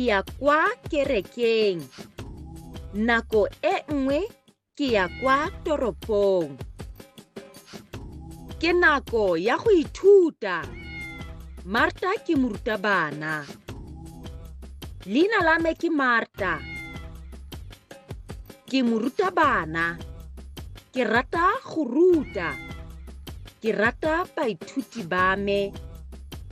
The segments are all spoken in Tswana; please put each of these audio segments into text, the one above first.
ya kwa kerekeng. Nako e nngwe ke ya kwa toropong. Ke nako ya go ithuta. Marta ke morutabana. Leina la me ke Marta. Ke morutabana. Ke rata go ruta. Ke rata baithuti ba me.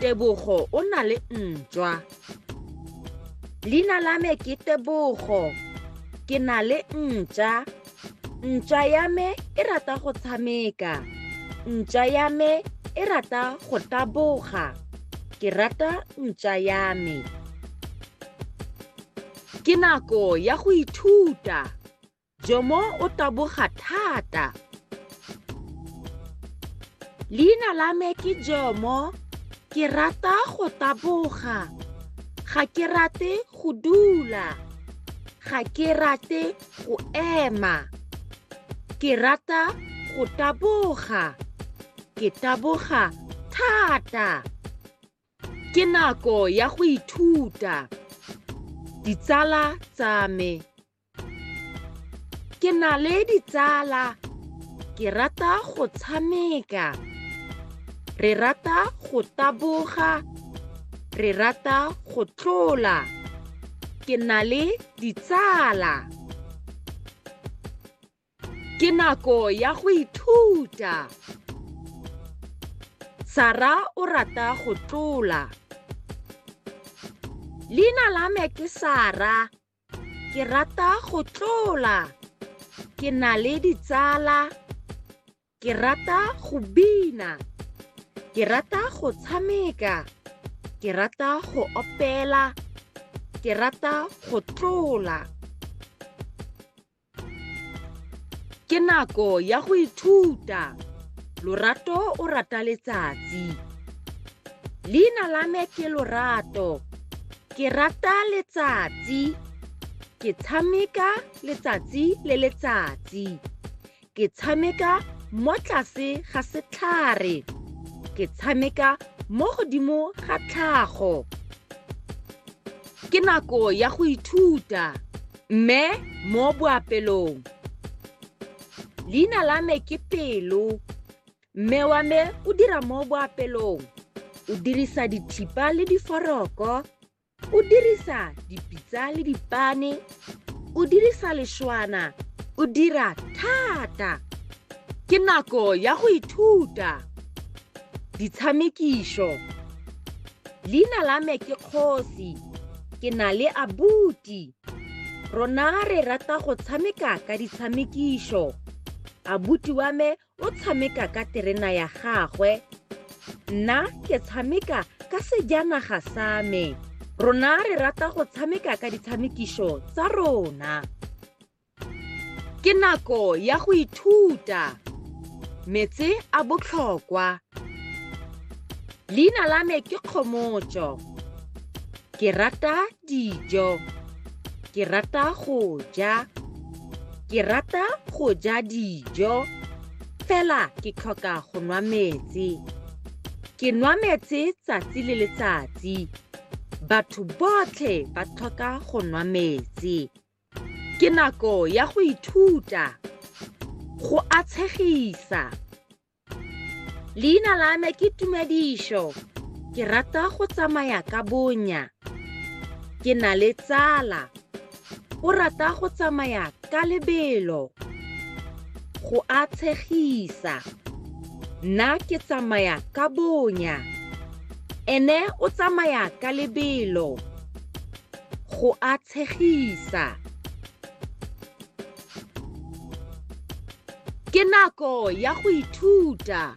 tebogo o na le ntšwa leina la me ke tebogo ke na le ntša ntša ya me e rata go tshameka ntša ya me e rata go taboga ke rata ntša ya me ke nako ya go ithuta Jomo o taboga thata. Leina la me ke Jomo. Ke rata go taboga. Ga ke rate go dula. Ga ke rate go ema. Ke rata go taboga. Ke taboga thata. Ke nako ya go ithuta. Ditsala tsa me. ke na le ditsala ke rata go tshameka re rata go taboga re rata go tlola ke na le ditsala ke nako ya go ithuta sara o rata go tlola leina la me ke sara ke rata go tlola ke na le ditsala ke rata go bina ke rata go tshameka ke rata go opela ke rata go tlola ke nako ya go ithuta lorato o rata letsatsi leina la me ke lorato ke rata letsatsi ke tshameka letsatsi le letsatsi ke tshameka mo tlase ga setlhare ke tshameka mo godimo ga tlhago ke nako ya go ithuta Mme mo boapelong. Leina la me ke Pelo. Mme wa me o dira mo boapelong. O dirisa dithipa le diforoko. O dirisa dipitsa le dipane. O dirisa lešwana. O dira thata. Ke nako ya go ithuta. Ditshamekišo. Leina la me ke Kgosi. Ke na le abuti. Rona re rata go tshameka ka ditshamekišo. Abuti wa me o tshameka ka terena ya gagwe. Nna ke tshameka ka sejanaga sa me. Rona re rata go tshameka ka ditshamekišo tsa rona. Ke nako ya go ithuta. Metse a botlhokwa. Leina la me ke Kgomotso. Ke rata dijo. Ke rata go ja. Ke rata go ja dijo. Fela ke tlhoka go nwa metsi. Ke nwa metsi tsatsi le letsatsi. Batho botlhe ba tlhoka go nwa metsi. Ke nako ya go ithuta, go atshegisa. Leina la me ke Tumedišo. Ke rata go tsamaya ka bonya. Ke na le tsala. O rata go tsamaya ka lebelo. Go a tshegisa. Nna ke tsamaya ka bonya. Ene o tsamaya ka lebelo. Go a tshegisa. Ke nako ya go ithuta.